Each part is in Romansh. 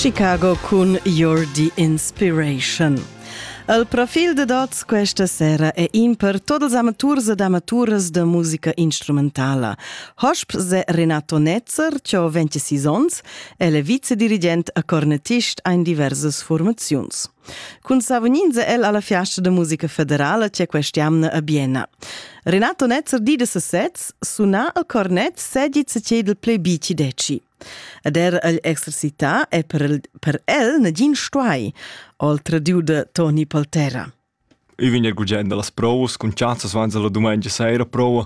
Chicago cun You're the Inspiration. El profil de Dots questa sera è in per tots els amaturs ed amaturas de musica instrumentala. Hosp se Renato Netzer, che ho 26 ons, è le vicedirigent a cornettist ein diverses formaziuns. Cun savuninza el alla fiasta da musica federala c'è quest'amna a Bienna. Renato Netzer di da sesez suna al cornet segit se cedel ple bici deci. Ed er el exercità è per el, per el nagin stuai, oltre diu de Toni Poltera. Eu vin er gugent a las provas, cun chazzas vanza la domenica sera prova.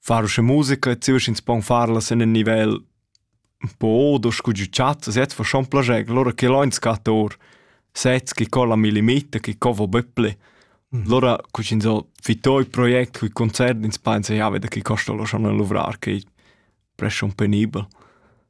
far sche musica e ziusch ins pon farlas in un nivel po odo scu giu chat set fa schon plager lora che loin scator sets chi colla mi limita chi co vo böpple lora cu ins ho fitoi project cu concert ins pensa ja veda chi costa lo schon a luvrar che presce un penibel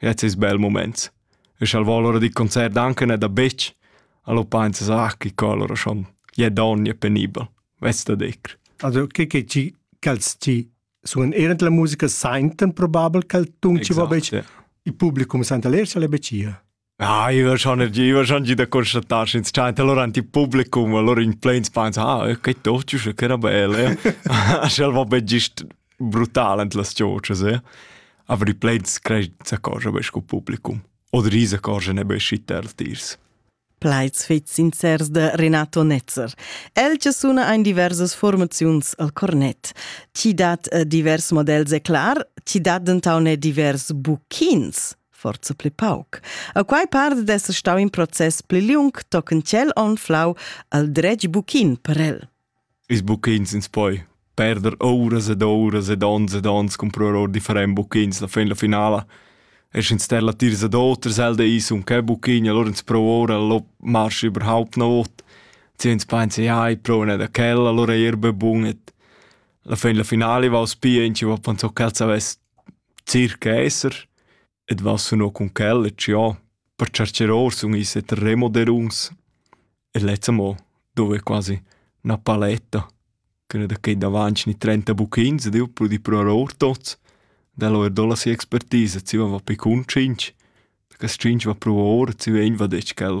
Jetzt ist bel moment. Ich al vo allora di concert anche ne da bitch. Allo pensa sa chi collora schon. Je donne penibel. Wes da dir. Also che che ci calz ci sun erend la musica senten probabel cal tunci va bec ja. il publicum senta lersa le becia. Ah, io schon io schon da constattar ins chat allora anti publicum allora in plains pensa ah, che toccio che era bella. Schel va be gist brutal ant las chotschas, eh? aber i plain scred s'accorgia be sco publicum. Oder is accorgia ne be schi tertirs. Plaids fit sincers de Renato Netzer. El che suna ein diversas formaziuns al cornet. Ti dat eh, divers models e clar, ti dat dentau ne divers buchins forza pli pauc. A quai part d'esser stau in process pli liung, tochen tschel on flau al dretg buchin per el. Ils bucchins ins poi perder ouras ed ouras ed ons ed ons cumprar or differents bucchins la fin la finala. E sch'ins ster latiers ad oters, el dei sun che buchin, allura ins prova ora, lo marschi überhaupt na ot. Zi ins pensa, ja, ich prova nicht da quel, allora è er be bun. Et la fin la finala vaus pia, ins va pensò ch'el savess circa esser. Ed va suno cun quel e ciò, per cercher or sun i's et remoderuns. E lezza mo, dove quasi, 'na paletta, ch'üna da quai davant ni trenta buchins ed eu pudi pruar our tots. Dello er do la sia expertisa, zieva va pi cun tschinch, perché tschinch va pruo our e zieva egn va detg quel.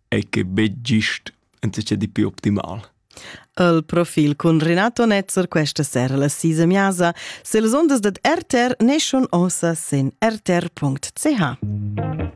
e che betg gist entschet di più optimal. El profil cun Renato Netzer questa sera la sisa miasa se les ondas dad RTR neschon ossa sen rtr.ch.